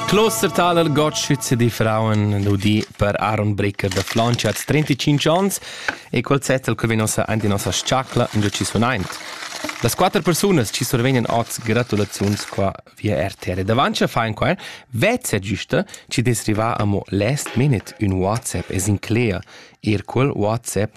Kloster Taler Gotschitz di Frauen nudi per Aaron Bricker da Flancia hat 35 ans e quel zettel che vegn nossa ant in nossa sciacla in giu ci sunaint. Las quattro persone ci survegnan oz gratulaziuns qua via RTR. Davanti a fein qua, vezza giusta, ci desriva amo last minute un WhatsApp es in clear, er quel WhatsApp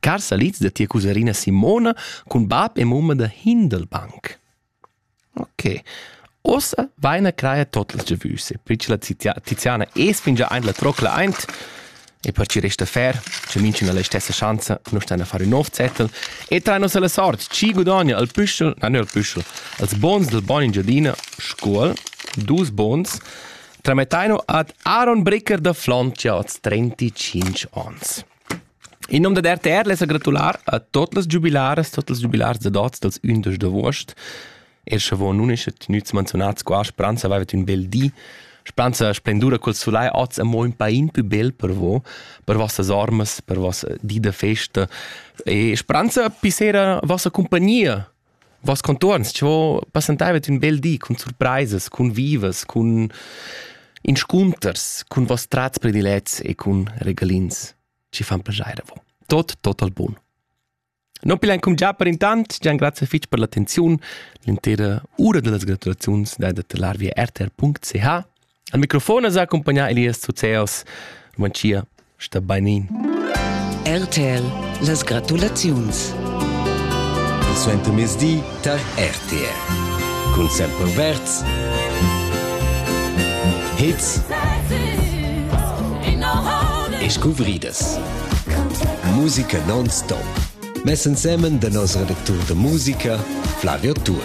Car salids da tia cusarina Simona cun bab e mumma da Hindelbank. Ok. Ossa vaina craia tot las giavüse, pli che la Tiziana es fingià aint la trocla aint, e per chi resta fer, che minchun ha la stessa schanza, nu stan a fare un nov zettel, e train nos alla sort, chi gudogna al püschel, na nur al püschel, als bons del bon in giardina, Scuol, dus bons, tramettaino ad Aaron Bricker da Flontia oz 35 ons. In nom dad RTR less er gratular a tot las giubilaras, tot ils giubilars da dots dals 11 d'agost. Er sche von nun isce tenuts menzionats qua, speranza aveva un bel di. Speranza splendura col solai oz amo un pain più bel per vo, per vossas ormas, per vossa di da festa e speranza pi sera vossa compagnia Voss contuorns cho passantaivat ün bel di cun surpraisas, cun vivas, cun inscunters, cun voss trats predilets e cun regalins chi fan plaschair a vo. Tot total bun. Non pilan cum già per intant, gian grazie fich per l'attenziun. L'intera ura dellas gratulaziuns dai da telar via rtr.ch Al microfon es accumpagnà Elias Zuzeos. Manchia, sta bainin. RTL, las gratulaziuns. Il suentermezdi tar RTL. Cun sempre verds. Hits e scuvridas. Musica non-stop. Mess ensemen da nos redactur da musica, Flavio Tur.